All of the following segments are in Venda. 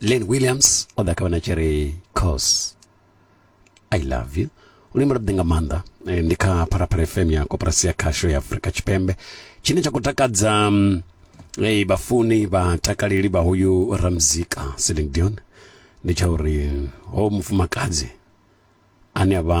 len williams o ḓa kha vhana tshi ri cos i love you une mulaḓi nga maanḓa eh, ndi kha pharaphala fm ya koporasi ya khasho ya afurika tshipembe tshine tsha khou takadza mm, eh, vhafuni vhatakaleli vha hoyu ramzika celine dion ndi tsha uri ho mufumakadzi ane a vha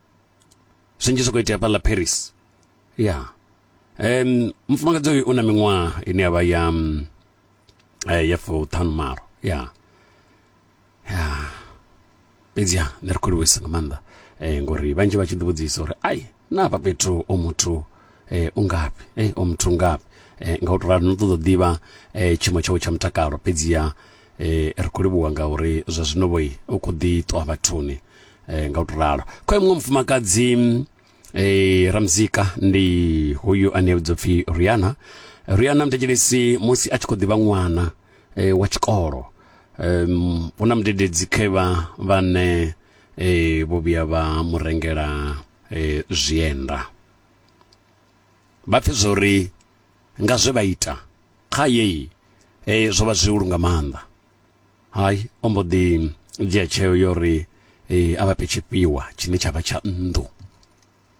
zwinzhi zwi khou itea fhaḽa paris ya um mufumakadzi uyu u na miṅwaha ine ya vha ya mm, eh, ya fuṱhanu malo ya ya fhedzi ha nṋe ri khou livhuisa nga maanḓa um ngori vhanzhi vha tshi ḓi vhudzisa uri ai na hafha fhethu o muthu um u ngafhi e o muthu u ngafhi um nga u to rali no ṱoḓa u ḓivha um tshiimo tshawe tsha mutakalo fhedziha um ri khou livhuwa ngauri zwa zwino vhoi u khou ḓi ṱuwa vhathuni e, nga u to ralo kha muṅwe mufumakadzi e, ramuzika ndi hoyu ane vhidzwa pfi riana riana mutetshelesi musi a tshi khou ḓivha ṅwana e, wa tshikolo um, hu na mudededzi khevha vhane e, vho vhuya vha mu rengela e, zwienda vha pfe zwori nga zwe vha ita kha yeyi e, zwo vha zwi u lunga maanḓa hai o mbo ḓi dzhia tsheo yo ri a vha fhe tshifhiwa tshine tsha vha tsha nnḓu